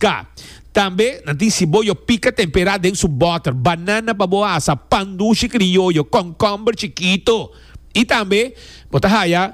Ka. Tambe nan tin siboyo pika temperá den su bòter, banana pa bo asa, pan dushi krioyo, kònkòmber chikito. I tambe bo ta haya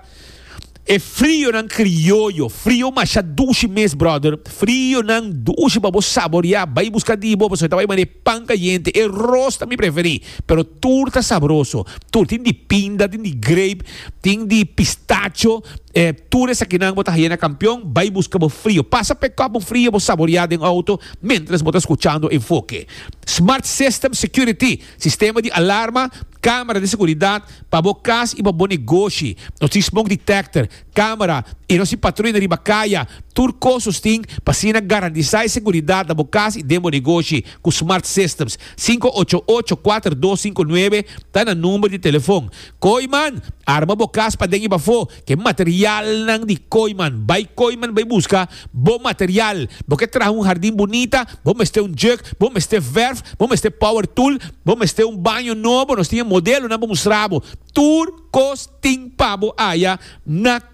e frionan krioyo. Frio masha dushi mes, bròder. Frionan dushi pa bo saboriá. Bai buska di bo pasobra e ta bai manera e pan kayente. E ros ta mi preferí, pero tur ta sabroso. Tur tin di pinda, tin di grape. Tin di pistacho, e tur esakinan bo ta haye na Kampion, bai buska bo frio. Pasa p'e kòp un frio bo saborea den outo mentras bo ta skuchando Enfoke. Smart System Security, sistema di alarma, kamera di seguridat pa bo kas i pa bo negoshi. Nos tin smoke detector, kamera i nos tin patruina riba kaya. Tur kos nos tin pa asina garantisá e seguridat na bo kas i den bo negoshi ku Smart Systems. Sinku ocho ocho, kuater dos sinku nuebe ta nan number di telefòn. Kooiman, arma bo kas paden i bafó ku e materialnan di kooiman. Bai kooiman bai buska bo material. Bo ke traha un hardin bunita, bo mester un juk, bo mester verf, bo mester power tool, bo mester un baño nobo, nos tin e modelonan pa mustrabo. Tur kos tin pabo aya na.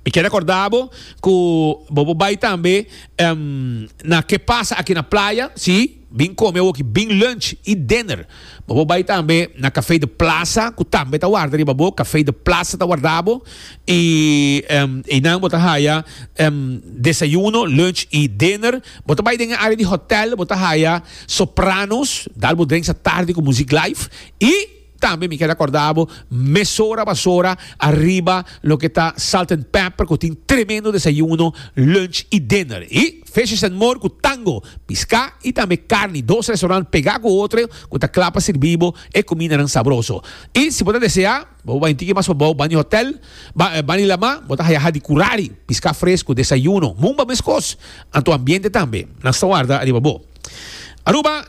Mi ke rekorda bo ku bo por bai tambe na Ke Pasa Aki na Playa, si, bin kome awoki bin lunch i dinner. Bo por bai tambe na Kafei de Plasa ku tambe ta warda riba bo, Kafei de Plasa ta warda bo i einan bo ta haya desayuno, lunch i dinner. Bo ta bai den e área di hòtèl, bo ta haya Sopranos, dal bo drenks atardi ku muzik live i. Tambe mi kel akorda bo mesora basora ariba loke ta Salt and Pepper ku tin tremendo desayuno, lunch i dinner. I Fishes and More ku tango, piská i tambe karni, dos restaurant pegá ku otro ku ta kla pa sirbí bo e kumindanan sabroso. I si bo ta deseá, bo por bai un tiki mas pa bou, Bani Hotel, Bani La Ma, bo ta haya hadi kurari, piská fres ku desayuno. Mumba meskos, anto ambiente tambe nan sta warda ariba bo. Aruba.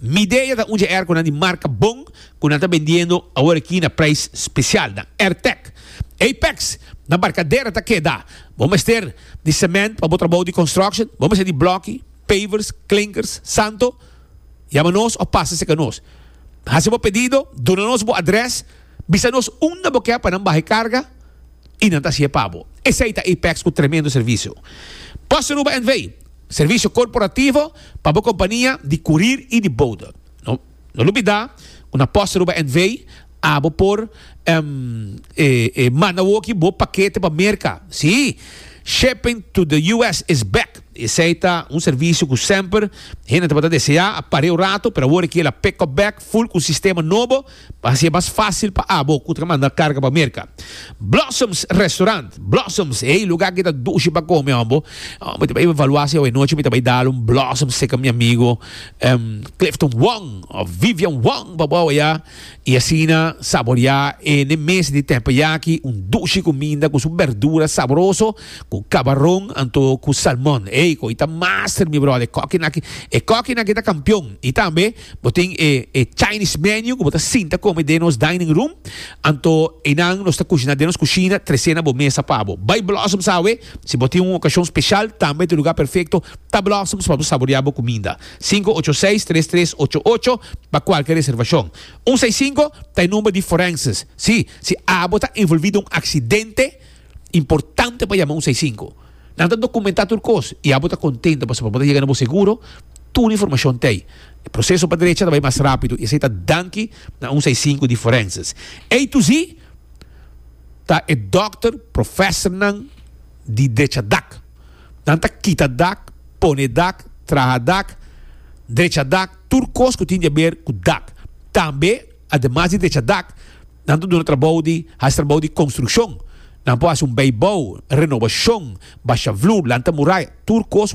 Midea ta un dje airconan di marca bon cu nan ta bendiendo awor aki na prijs special nan. Airtec Apex na Barcadera ta keda. Bo mester di cement pa bo trabao di construction? Bo mester di blocki, pavers, klinkers, santo? Yama nos of pasa seca nos. Haci bo pedido, duna nos bo adres, bisa nos unda bo ke pa nan baha e carga. y nan ta haci'e pa bo. Esey ta Apex cu tremendo servicio. Bossa Aruba NV. Servicio corporativo pa bo compania di curir y di bouda. No no lubida cu na Bossa Aruba NV. abo por manda woki bo pakete pa Merca. Si, Shipping to the US is back. Esey ta un servicio cu semper hende tabata desea, a parea un rato, pero awor e kier la pick up back full cu un sistema nobo. Pa hasié mas fásil pa abo ku ta manda karga pa Merka, Blossoms Restaurant, Blossoms, e lugá ku e ta dushi pa kome hòmbo. Mi ta bai evaluá si awe nochi mi ta bai dal un blossom seka mi amigo Clifton Wong òf Vivian Wong pa bo aweyá i asina saboreá e n'e mes di tèmpeyaki un dushi kuminda ku su bèrdura saboroso ku kabaron anto ku salmon. Ey, ko'i ta master mi bròder, e kòkina aki, e kòkina aki ta kampion i tambe. Bo tin e e Chinese menu ku bo ta sinta kome den nos dining room, anto einan nos ta kushiná den nos kushina tres'é na bo mesa pa bo. Bai Blossoms awe, si bo tin un okashon speshal tambe ta e lugá perfekto ta Blossoms pa bo saboriá bo kuminda. Sinku ocho seis tres tres ocho ocho pa kualke reservashon. Un seis sinku ta e number di forenses. Sí, si abo ta envolví den un aksidente, Importante pa yama un seis sinku. Nan ta dokumentá tur kos i abo ta kontento pasobra bo ta yega na bo seguro tur informashon t'ei. E proseso pa drecha ta bai mas rápido i esei ta danki na un seis sinku di forenses. Ei tu si ta e dòkter profèsornan di drechadak. Nan ta kita dak, pone dak, traha dak, drecha dak, tur kos ku tin di haber ku dak. Tambe. Ademas di techa dak, nan ta duna trabou di hasi trabou di konstrukshon. Nan por hasi un beibou, renobashon, basha vloer, lanta muraya, tur kos.